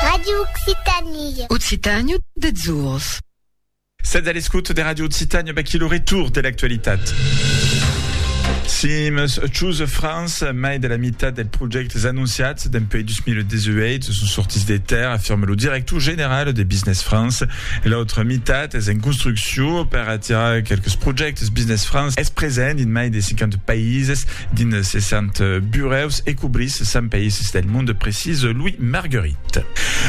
Radio Occitanie. Occitània dethzors. Sètz a l'escòt de Radio Occitània, vaquí lo retour de l'actualitat. Sims Choose France, mai de la meitat dels projèctes anunciats dempuèi 2018 son sortits de terre, afirme lo director general de Business France. L'autra meitat es en construcció per atirar quelques projèctes. Business France es present dins mai de 50 païses Dins 60 burèus e cobrís 100 païses del monde, precisa Louis Marguerit.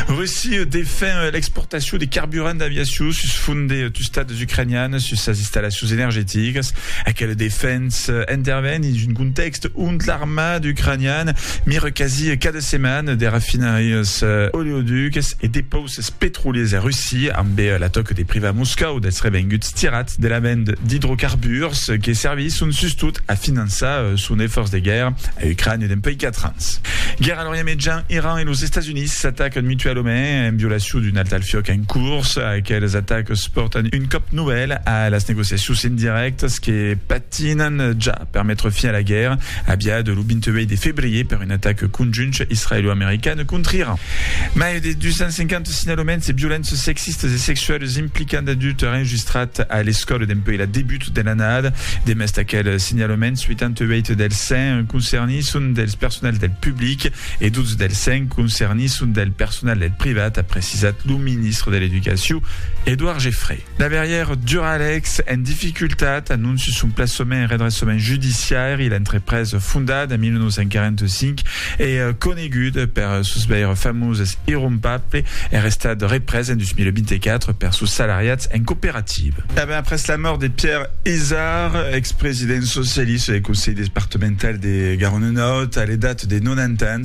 Russia defen l'exportacion de carburant d'aviacion sus font de tustats ucranianas sus sas installacions energeticas. Aquela defensa interven dins un contèxt ont l'armada ucraniana mira quasi cada setmana de rafinarias oleoducas e depausas Ses petroliers a Russia, ambe la tòca de privar Moscòu dels revenguts tirats de la vend d'idrocarburs que servisson sustot a finançar son efòrç de guèrra a Ucrània dempuèi 4 ans. Guèrra a l'Orient Mejan, Iran e los Estats Units s'atacan mutualament en violacion d'un alt al fiòc en curs. Aqueles atacs pòrtan un còp novèl a las negociacions indirèctas que Tinan ja per metre fin a la guèrra aviada lo 28 de febrier per un atac conjunt israelo-american contra Iran. Mai de 250 signalaments de violences sexistas e sexualas implicant adultes enregistrats a l'escòla dempuèi la debut de l'annada. Demest aquel signalaments, 88 dels 100 concernits son dels personals del public e 12 dels 100 concernits son del personal del privat, a precisat lo ministre de l'Educacion, Edouard Geffray. Daverièr Duralex en dificultat, anonci son plaçament en redressament judiciari, l'entrepresa fondada en 1945 e coneguda per sos veire famoses irrompable er estat represa en 2024 per sos salariats en cooperativa. E ben après la mòrt de Pierre Izard, ex-president socialista del Conselh departemental de Garona Nòrd a l'edat de 90 ans,